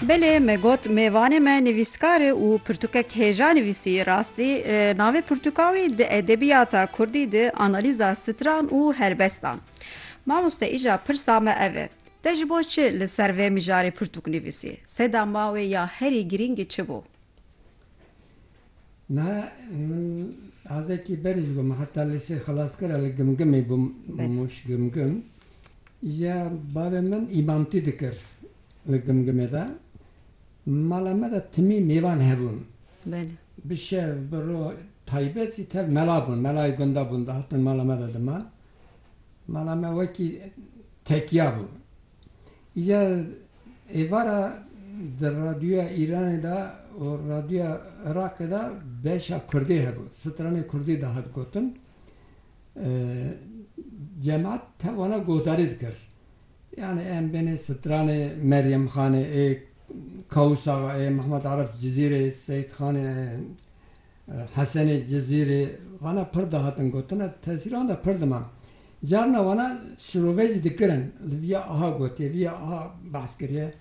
Belê me got mêvanê me nivîskar e û pirtûkek hêja nivîsî. Rastî navê pirtûka wî di edebiyata kurdî de analîza stran û helbestan. Mamoste îja pirsa me ev e, te ji bo çi li ser vê mijarê pirtûk nivîsî? Seda ma wê ya herî girîng çi bû? Me min azekî berî ji bo min heta lîsê xilas kir. Li Gimgimê bûm, Mûş Gimgim. Îja bavê min îmamtî dikir li Gimgimê de. Mala me de timî mêvan hebûn. Bi şev bi roj taybet jî tev mela bûn. Melayê gunda bûn dihatin mala me de diman. Mala me wekî tekiya bû. Ya êvara di Radyoya Îranê de û Radyoya Iraqê de beşa kurdî hebû. Stranê kurdî de hat gotin. Cemaat tewana gotarî dikir. Yanî em bênê stranê Meryem Xanê ê, Kawûs Axa ê, Mehmet Arif Cizîrê, Seyîd Xanê ê. Hesenê Cizîrî, wana pir dihatin gotin e, tesîra wan de pir dima. Carina wana şirovê jî dikirin, li vî ya aha gotiye, vî ya aha behs kiriye.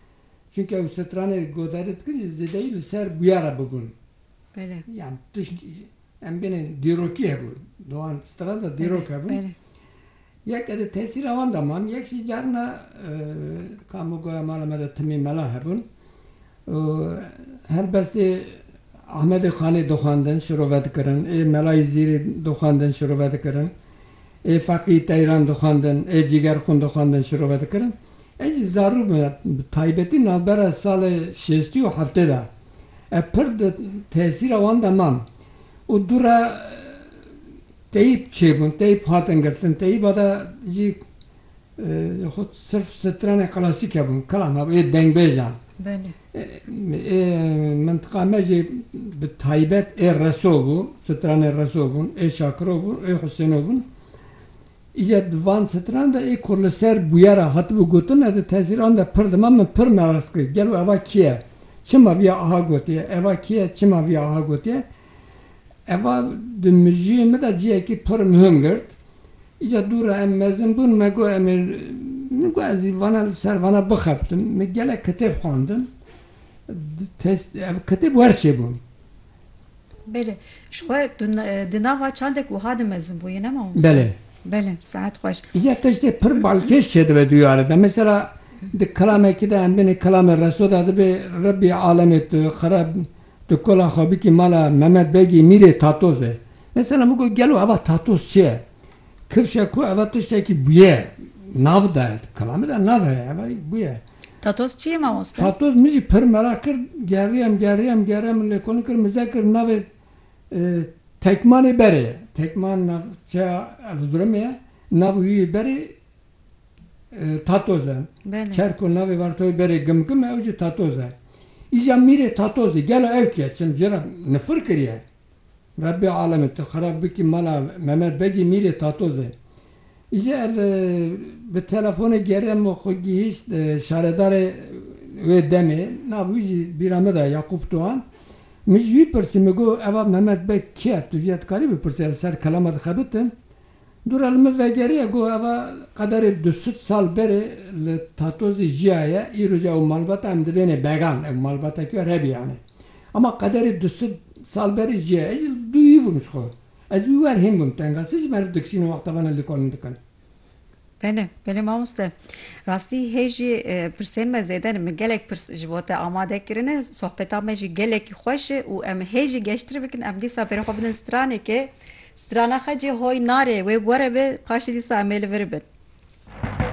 Çunke ew stranê godarî dikin jî zêdeyî li ser bûyer re bibûn. Yan tişt em bêne dîrokî hebû, di wan stran de dîrok hebû. Yek di tesîra wan de man, yek jî carina kamogoya mala me de timî mela hebûn û helbestê Ahmedê Xanê dixwendin, şirove dikirin, ê Melayî Zîrî dixwendin, şirove dikirin, ê Feqî Teyran dixwendin, ê Cîgerxûn dixwendin, şirove dikirin. Ez jî zarû bûm, bi taybetî navbera salê şêstî û heftê de. Ez pir di tesîra wan de mam û dû re. Teyîb çêbûn, teyîb hatin girtin, teyîba de jî xwed sirf stranên klasîk hebûn, klan hebûn, ê dengbêjan. Belê. Ê mintiqa me jî bi taybet ê reso bû, stranên reso bûn, ê şakiro bûn, ê husêno bûn. Îje di van stranan de ê ku li ser bûyera hatibû gotin ez di tesîran de pir dima min pir merast kir, gelo eva kî ye? Çima viya aha gotiye? Eva kî ye, çima viya aha gotiye? Eva di mijiyê me de cihekî pir muhim girt. Îcar dû re em mezin bûn, me got em ê min got ez ê vana li ser vana bixebtim. Min gelek kitêb xwendin. Ev kitêb werçê bûn. Belê. Ji xwe tu di nava çandek wiha dimezin bûyî ne mamoste? Belê. Belê, sihet xweş. Îcar tiştê pir balkêş çêdibe duyarê de. Mesela di kilamekî de em binê kilamê Reso de dibê Rebbî alemê tu xirab Di kola xwebitî mala Memed Begî Mîrê Tatoz e. Mesela min got gelo eva tatoz çi ye? Kifşe ku eva tiştekî bûye, nav daye. Di kola min de nav heye, eva yî bûye. Tatoz çi ye mamoste? Tatoz min jî pir merak kir, geriyem, geriyem, geriyem, min lêkolîn kir, min zek kir navê Tekmanê Berê ye. Tekman navçeya Erzurumê ye. Navê wî yê Berê, Tatoz e. Çer ku navê Vartoyê berê Gimgim e ew jî Tatoz e. Îja mîrê Tatoz î. Gelo ew kî ye? Çim ji re nifir kiriye? Rebbê alemên tu xirab bikî mala Memed Begî mîrê Tatoz e. Îje ez bi telefonê geriya min xwe gihîşt şaredarê wê demê. Nav wî jî bîra min de Yaqûp Tuhan. Min ji wî pirsî min got eva Memed Beg kî ye? Tu ji ya dikarî bipirsî ez li ser kelama dixebitim. Dûra li min vegeriya ku eva qederê du sed sal berê li Tatozê jiyaye, îro jî ew malbata em dibênê began, ev malbata kî ye Rebiyan e. Ema qederê du sed sal berê jiyaye. Ez jî li dûyî bûm ji xwe. Ez wî wer hîn bûm tenga. Sê ji meriv dikişînin wexta vana lîkolin dikin. Belê, belê mamoste. Rastî hê jî pirsên me zêde ne. Min gelek pirs ji bo te amade kirine. Sohbeta me jî gelekî xweş e û em hê jî geştir bikin. Em dîsa berê xwe bidin stranekê. Strana xwe cê hoy nare. Wê were be paşê dîsa em ê li vir bin.